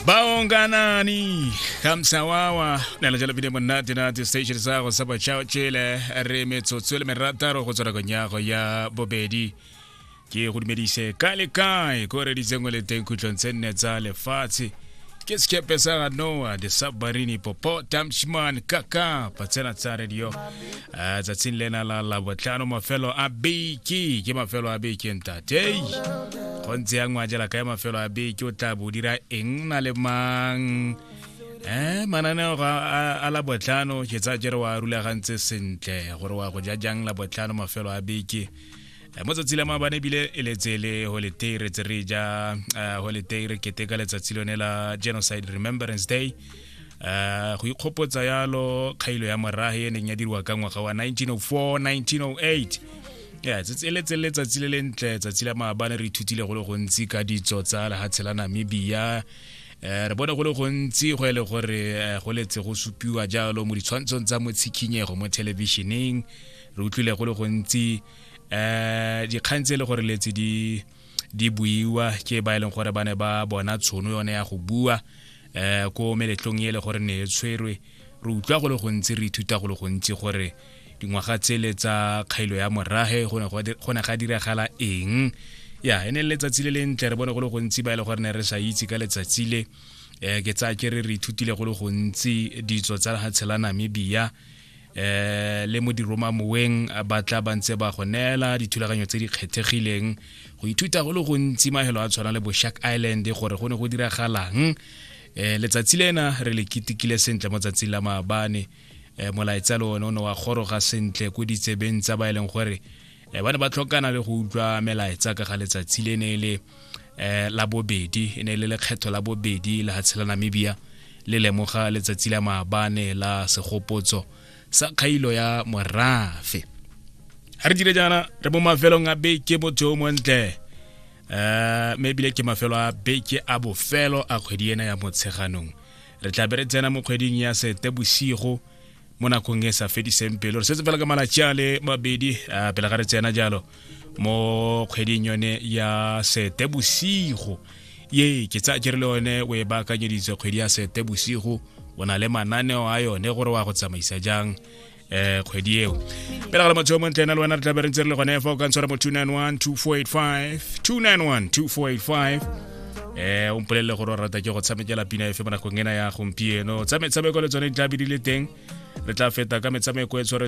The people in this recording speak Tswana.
baonganani kamsawawa na lejalo bile monate na di-station sa go sa botšhaotšele re metsotso le merataro go tswa nakong ya go ya bobedi ke go dumedise ka le kae ko reditseng le teng khutlong tse nne tsa lefatshe ke sekepe sa ga noa the submarine popo tamshman kaka patsena tsa radio Ah, tsatsing lena la labotlhano mafelo a beke ke mafelo a beke ntatei go ntse ya ngwajela kae mafelo a beke o tla bo o dira eng na le mang eh mananeo ga a- a labotlhano ke tsa jere wa rulagantse sentle gore wa go ja jang labotlhano mafelo a beke Eh, mo tsatsi la maabane ebile e letse le holiday re tse re ja eh, holiday re keteka letsatsi lone la genocide remembrance day um go ikgopotsa yalo kgailo ya morage e neng ya diriwa ka ngwaga wa 1904 1908 ya e letse letsatsi le lentle tsatsi la maabane re ithutile go le gontsi ka ditso tsa lehatshe la namibia um re bone go le gontsi go e le gore go letse go supiwa jalo mo ditshwantshong tsa mo tshikhinyego mo thelebišeneng re utlwile go le gontsi um dikgang tse e le gore letse di di buiwa ke ba e leng gore ba ne ba bona tshono yone ya go bua um ko meletlong e le gore ne e tshwerwe re utlwa go le gontsi re ithuta go le gontsi gore dingwaga tsele tsa kgailo ya morage go ne ga diragala eng ya e ne le letsatsi le lentle re bone go le gontsi ba e le gore ne re sa itse ka letsatsi le um ke tsaya ke re re ithutile go le gontsi ditso tsa tshelanamibia eh le mo diroma moweng ba tla ba ntse ba go neela dithulaganyo tse di kgethegileng go ithuta go le gontsi mahelo a tshwana le bo shark island gore go ne go diragalang eh letsatsi lena re le ketekile sentle mo tsatsing la maabane eh molaetsa le one o ne wa goroga sentle ko ditsebeng tsa ba e leng gore um ba ne ba tlhokana le go utlwa melaetsa ka ga letsatsi le ne e le um la bobedi e ne e le lekgetho la bobedi la hatshe la namibia le lemoga letsatsi la maabane la segopotso sa kgailo ya morafe ga re dire jaana re mo mafelong a beke motho o montle um mme ebile ke mafelo a beke a bofelo a kgwedi ena ya motsheganong re tla be re tsena mo kgweding ya sete bosigo mo nakong e sa fediseng pelo re setse fela ka malatsi a le mabedi uh, pele ga re tsena jalo mo kgweding yone ya sete bosigo ye ke tsa ke re le yone o e baakanyeditse kgwedi ya sete bosigo o na le mananeo a yone gore wa go tsamaisa jang eh kgwedi eo pele ga le motho mo ntlena le wena re tla be re ntse re le gone fa o ka ntshwara mo 291 2485 291 2485 eh o mpolelele gore o rata ke go tshamekela pina efe mo nakong ena ya gompieno tsa metshameko le tsone di tla be di le teng re tla feta ka metshameko e tshware